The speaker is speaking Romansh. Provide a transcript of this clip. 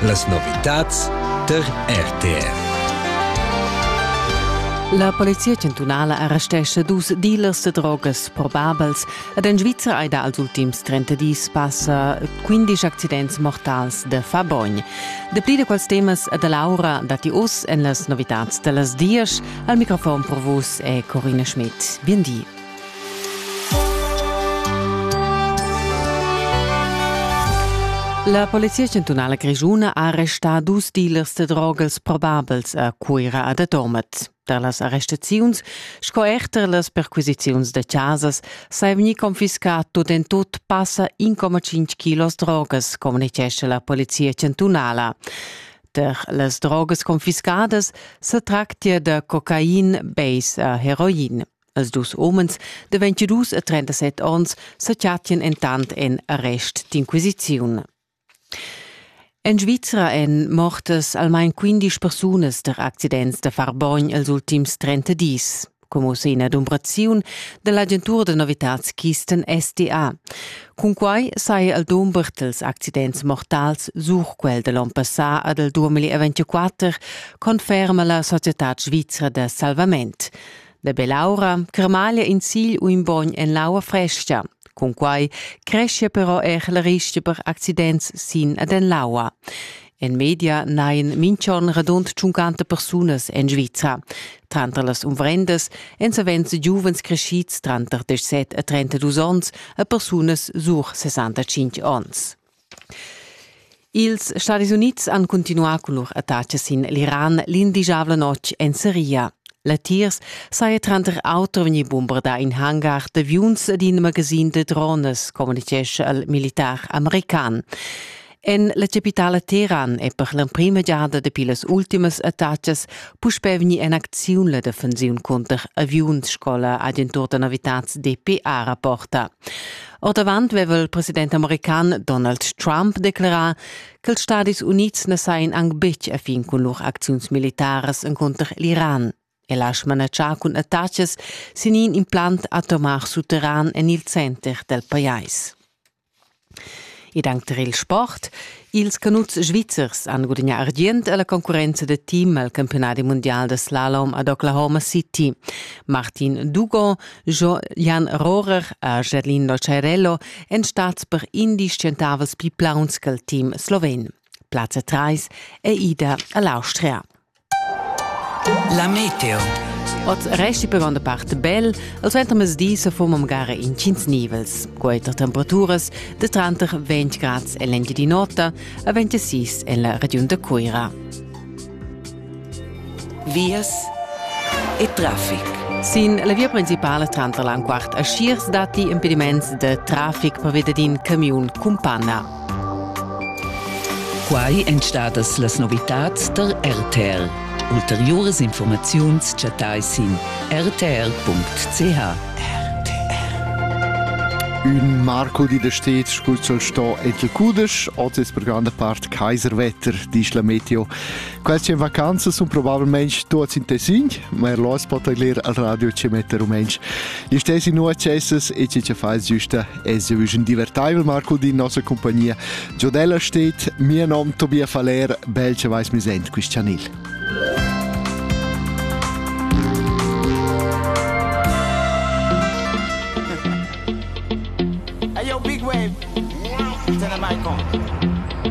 Las novitads tar RTR. La polizia chantunala arrestescha dus dealers da drogas probabels ed en Svizra hai dals ultims 30 dis passa 15 accidents mortals da Fabogn. Dapli da quels temas e da Laura datti oz en las novitads da las dias. Al microfon per vus è Corina Schmidt. Bien di. La Polizia chantunala grischuna ha arrestà dus dealers da drogers probabels a Cuira e da Tormez. Tar las arrestaziuns sco er tar las perquisiziuns da chasas sa è vegnì confiscà tut en tut passa 1,5 kilos drogas, communitgescha la Polizia chantunala. Tar las drogas confiscadas sa tractia da cocain, base e heroin. Els dus homens de 22 e 37 onns sa chattien entant en arrest d'inquisiziun. En Svizra èn mortas almain 15 persunas der accidents da Farbogn els ultims 30 dis, como se ina dumbraziun dell'agentur de novitatskisten SDA. Cun quai saja el domber els accidents mortals sur quel de l'on passà ad el 2024, conferma la Società Svizra de Salvament. La bell'aura cremaglia in sigl u in bogn en l'aua fresca. Cunquai creschia però er la rischia per accidents sin ad en l'aua. En media nain minchon radund 50 persunas en Svizra. Tranter las umvrendas èn savens giuvens crescids tranter 17 e 32 onns e persunas sur 65 onns. Ils Stadis Unids han cuntinuà cun lur attacas sin l'Iran l'indigiabla notg en Siria. Latiers saja tranter auter vegnì bombardà in hangar d'aviuns d'in magasin da drones, communitgescha il militar american. En la capitala Teheran è per l'emprima giada dapi las ultimas attacas puspè vegnì en acziun la defensiun cunter aviuns sco la agentur da novitads DPA rapporta. Ordavant veva il president american Donald Trump declerà ch'ils Stadis Unids na sajan anc betg a fin cun lur acziuns militaras encunter l'Iran. El ha smanatschà cun attachas sin in implant atomar sutterran en il center dal pajais. Ed anche tar il sport. Ils canuts svizzers han gudagnà argient a la concurrenza da team al campionat mundial da slalom ad Oklahoma City. Martin Dugon, Jan Rohrer e Gerlino Cerello èn stads per indies tschentavels pli plauns che il team sloven. Plazza 3 è ida a l'Austria. La meteo. Oz resti per gronda part bel, al suentermezdi se fumam gara in cins nivels, quater temperaturas de tranter 20 grads en l'engi di notte a 26 en la regiun de Cuira. Vias e traffic. Sin la via principale tranter l'Anquart e Schiers datti impediments de traffic per via d'in camiun cun panna. Quai èn stadas las novitads tar RTR. Ulteriuras informaziuns chattai sin rtr.ch. Ün Marco di da stets scuzzol sto etl cudesch, otis per granda part Kaiserwetter, disch la Meteo. Queste vacanzas sun probabilmente tuots in tessin, ma er los pot ler al radio ci mette rumensch. Gli stessi nu accesses e ci ce fais giusta Es eu un divertaivel Marco din nossa compagnia. Giodella steht, mio nom Tobias Faller, belche vais mi sent Cristianil. Hey yo, Big Wave, turn the mic on.